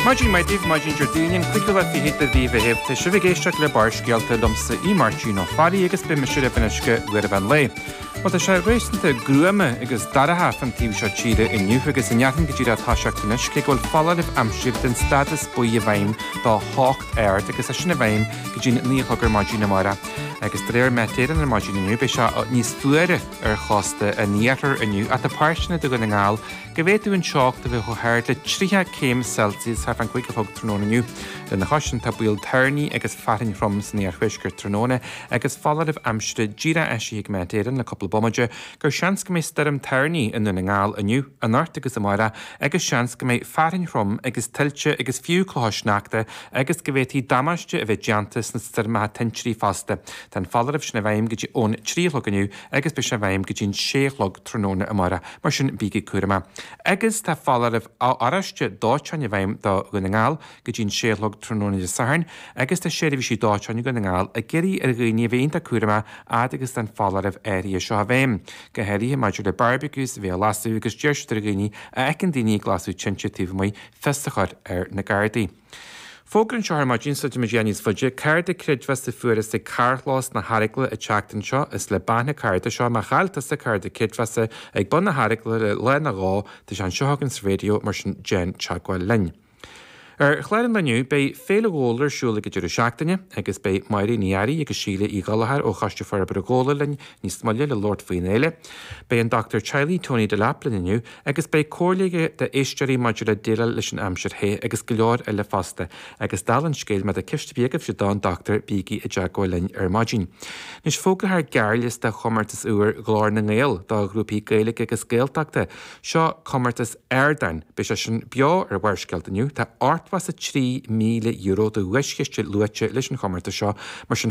Maidin mhaith daoibh, maidin Déardaoin an 25ú de mhí Mheithimh. Tá sibh ag éisteacht le Barrscéalta liomsa Aodh Máirtín Ó Fearraigh agus beidh mise libh anois go huair an mheán lae. Bhuel tá sé réasúnta gruama agus dorcha fán taobh seo tíre inniu agus i ndearfainn go dtí le atá sé ag anois cé go bhfuil foláireamh aimsire den stádas buí i bhfeidhm do theocht ard agus tá sin i bhfeidhm go dtí an 9 a chlog ar maidin amárach. Agus de réir Met Éireann ar maidin inniu beidh sé níos fuaire ar chósta an iarthair inniu ach tá páirteanna de Dhún na nGall go bhféadfadh an teocht a bheith chomh hard le 30 céim Celsius thart fán cúig a chlog tráthnóna inniu. Lena chois sin, tá baol toirní agus fearthainn throm san iarthuaisceart tráthnóna agus foláireamh aimsire díreach eisithe ag Met Éireann le cúpla bomaite gur seans go mbeidh stoirm toirní i nDún na nGall inniu, anocht agus amárach agus seans go mbeidh fearthainn throm agus tuilte agus fiú clocha sneachta agus go bhféadfadh damáiste a bheith déanta sna stoirmeacha tintrí fosta. Tá an foláireamh sin i bhfeidhm go dtí ón trí a chlog inniu agus beidh sé i bhfeidhm go dtí an sé a chlog tráthnóna amárach, mar sin bígí cúramach. Agus tá foláireamh oráiste dóiteáin i bhfeidhm do Dhún na nGall go dtí an sé a chlog tráthnóna Dé Sathairn, agus tá seirbhísí dóiteáin i nDún na nGall ag iarraidh ar dhaoine a bheith iontach cúramach fhad agus atá an foláireamh áirithe seo i bhfeidhm, go háirithe maidir le barbecues a bheith á lasadh, agus d'iarr siad ar dhaoine a fheiceann daoine ag lasadh tinte taobh amuigh fios a chur ar na Gardaí. Fógra anseo ar maidin, sula dtéimid a dhath níos faide. Cárta creidmheasa a fuarthas ag carrchlós na hEaragla an tseachtain seo. Is le bean an cárta seo, má chaill tusa cárta creidmheasa ag bun na hEaragla le lá nó dhó, tá sé anseo againn sa raidió, mar sin déan teagmháil linn. Ar chlár an lae inniu, beidh Féile Ghabhla ar siúl ag an deireadh seachtaine, agus beidh Máirín Uí Fhearraigh agus Síle Uí Ghallchóir ó Choiste Forbartha Ghabhla linn níos moille le labhairt faoin fhéile. Beidh an Dochtúir Teaghlaigh Tony Delap linn inniu, Agus beidh comhairle aige d'éisteoirí maidir le déileáil leis an aimsir the agus go leor eile fosta. Agus dála an scéil, má tá ceist ar bith agaibhse don Dr. bígí i dteagmháil linn ar maidin. Anois fógrófar gearrliosta chomórtas úr Ghlór na nGael do ghrúpaí Gaeilge agus Gaeltachta. Seo comórtas ardáin. Beidh sé sin beo ar Bharrscéalta inniu. Tá €83,000 de dhuaischiste luaite leis an chomórtas seo, mar sin